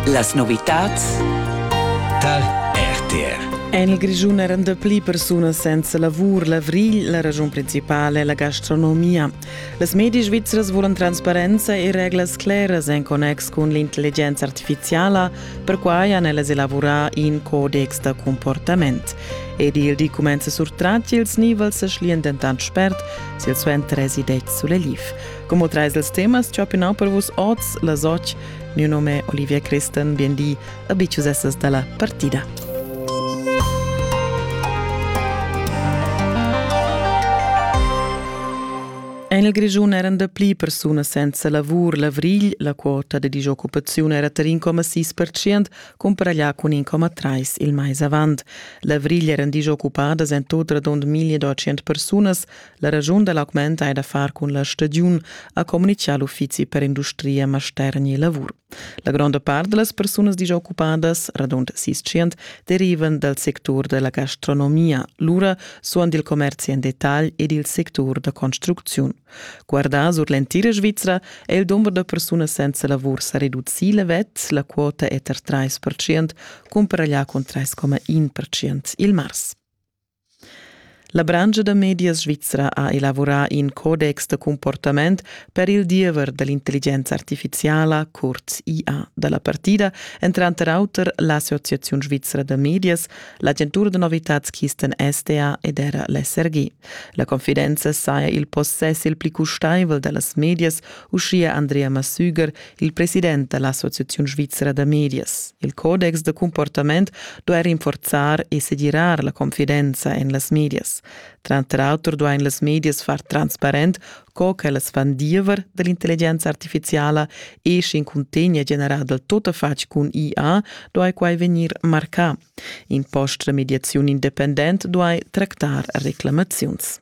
Las novitads tar RTR. En il Grischun eran dapli persunas senza lavur. L'avrigl, la ragiun principala è la gastronomia. Las media svizras volan transparenza e reglas claras en connex cun l'intelligenza artificiala. Perquai han ellas elaborà in codex da comportament. Ed il di cumenza surtrat ils nivels e schlian dentant spert silsuenter resideți sulle Liv. Como trais els temas che ho pinau per vus oz las och, mio nome è Olivia Christen, bienveni a Biciusessas dalla partida. En il Grischun eran dapli persunas senza lavur l'avrigl, la quota de disoccupazione era tar 1,6% comparaglià cun 1,3% il mais avant. L'avrigl eran disoccupadas en tot radund 1200 persunas, La ragiun da l'augment è da far cun la stagiun, ha communitgà l'uffizi per industria, mastergn e lavur. La gronda part da las persunas disoccupadas, radund 600, derivan dal sectur da la gastronomia, lura suon dil commerzi en detagl ed il sectur da construcziun. Guardà sur l'entira Svizra è il dumber da persunas senza lavur sa reducì levet, la quota è tar 3%, cumpara là cun 3,1% il mars. La branscha da medias svizra ha elavurà in codex da cumportament per il diever da l'intelligenza artifiziala, curt IA, da la partida, èn tranter auter l'Associaziun svizra da medias, l'agentura da novitads Kisten SDA ed era l'SRG. La confidenza saja il possess il pli custaivel da las medias, uschia Andrea Massüger, il president da l'Associaziun svizra da medias. Il codex da comportament duai rinforzar e segirar la confidenza en las medias. Tranter auter duain las medias far transparent co ch'ellas fan diever da l'intelligenza artifiziala e sch'in cuntegn è generà dal tuttafatg cun IA, duai quai vegnir marcà. In post da mediaziun independent duai tractar reclamaziuns.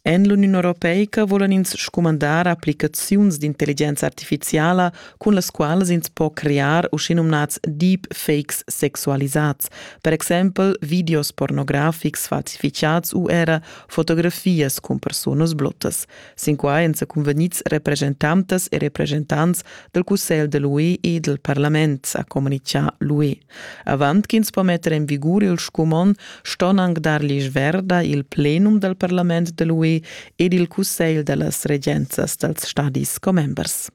En l'Uniun europeica vulan ins scumandar applicaziuns d'intelligenza artifiziala, cun las qualas ins po crear uschenumnads deepfakes sexualisads, per exempel videos pornografics falsificads u era fotografias cun personas blottas. Sin quai èn secunvegnids represchentantas e represchentants dal Cussegl de l'UE e dal parlament, ha communitgà l'UE. Avant ch'ins po metter en vigur il scumond, ston anc dar l'isch verda il plenum dal parlament de l'UE ed il cussegl da las regenzas dals stadis commembers.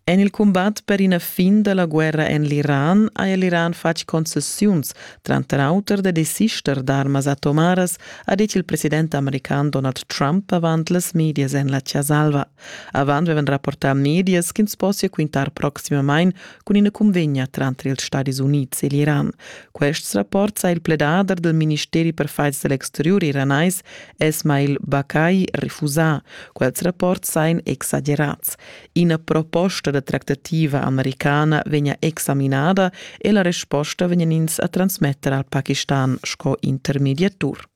En il cumbat per ina fin da la guerra en l'Iran ha l'Iran fatg concessiuns, tranter auter da desister d'armas atomaras, ha dit il president american Donald Trump avant las medias en la Chia Salva. Avant vevan rapportà medias ch'ins possia quintar proximamain cun ina cunvegna tranter ils Stadis Unids e l'Iran. Quests rapports ha il pledader del ministeri per fights dell'exteriur iranais Esmail Bakai refusà. Quels rapports sain exagerats. Ina proposta da tractativa americana vegna examinada e la resposta vegnan ins a transmetter al Pakistan sco intermediatur.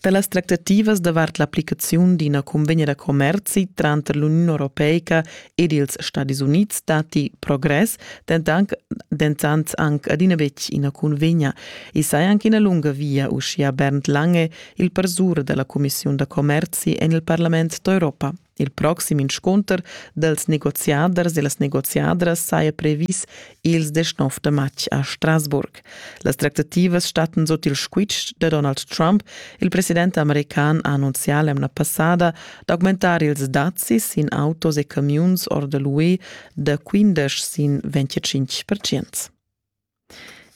Da las tractativas davart l'applicaziun d'ina cunvegna da commerzi tranter l'Uniun europeica ed ils Stadis Unids datti progress, dentant, dentant anc adina betg ina cunvegna. I saja anc ina lunga via, uschia Bernd Lange, il parsur da la cumissiun da commerzi en il parlament d'Europa. Il proxim inscunter dals negoziaders e las negoziadras saja previs ils 19 da matg a Strasburg. Las tractativas stattan sut il squitsch da Donald Trump. Il president american ha annunzià l'emna passada d'augmentar ils dazis sin autos e camiuns or da l'UE da 15 sin 25 percent.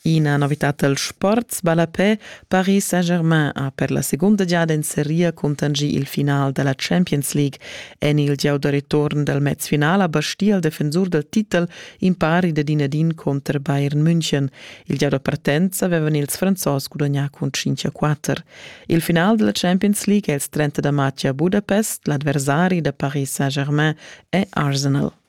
Ina novitad dal sport ballapè Paris Saint-Germain ha per la segunda giada en seria cuntanschì il final da la Champions League. En il gieu da return dal mezfinal ha bastì il defensur dal titel impari da din ad in cunter Bayern München. Il gieu da partenza avevan ils Franzos gudagnà cun 5 a 4. Il final della Champions League è il 30 da matg a Budapest, l'avversari da Paris Saint-Germain è Arsenal.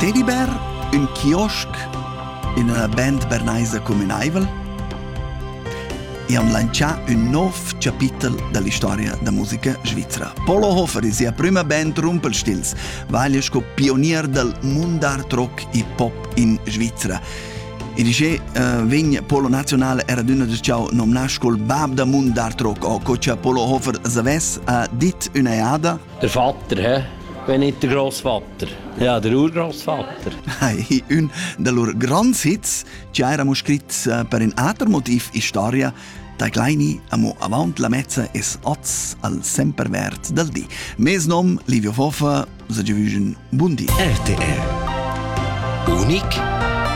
Teddybear, ün kiosk in üna band bernaisa cumünaivel e han lantschà ün nov chapitel da l'istoria da musica svizra. Polo Hofer e sia prüma band Rumpelstils vaglia sco pionier dal mund d'art rock e pop in Svizra. E di che uh, vegn Polo Nazionale era d'una da ciao nomnà col bab da mund d'art rock o co cha Polo Hofer zavess ha dit üna eada Der Vater, hä? Wenn nicht der Großvater. Ja, der Urgroßvater. Hey, un de lur grands hits che eravamo scrit eh, per in ater motiv in storia da Kleini amo avant la mezza es oz al semper verd dal di. Mes nom Livio Fofa, se giovügen bundi. RTR Unik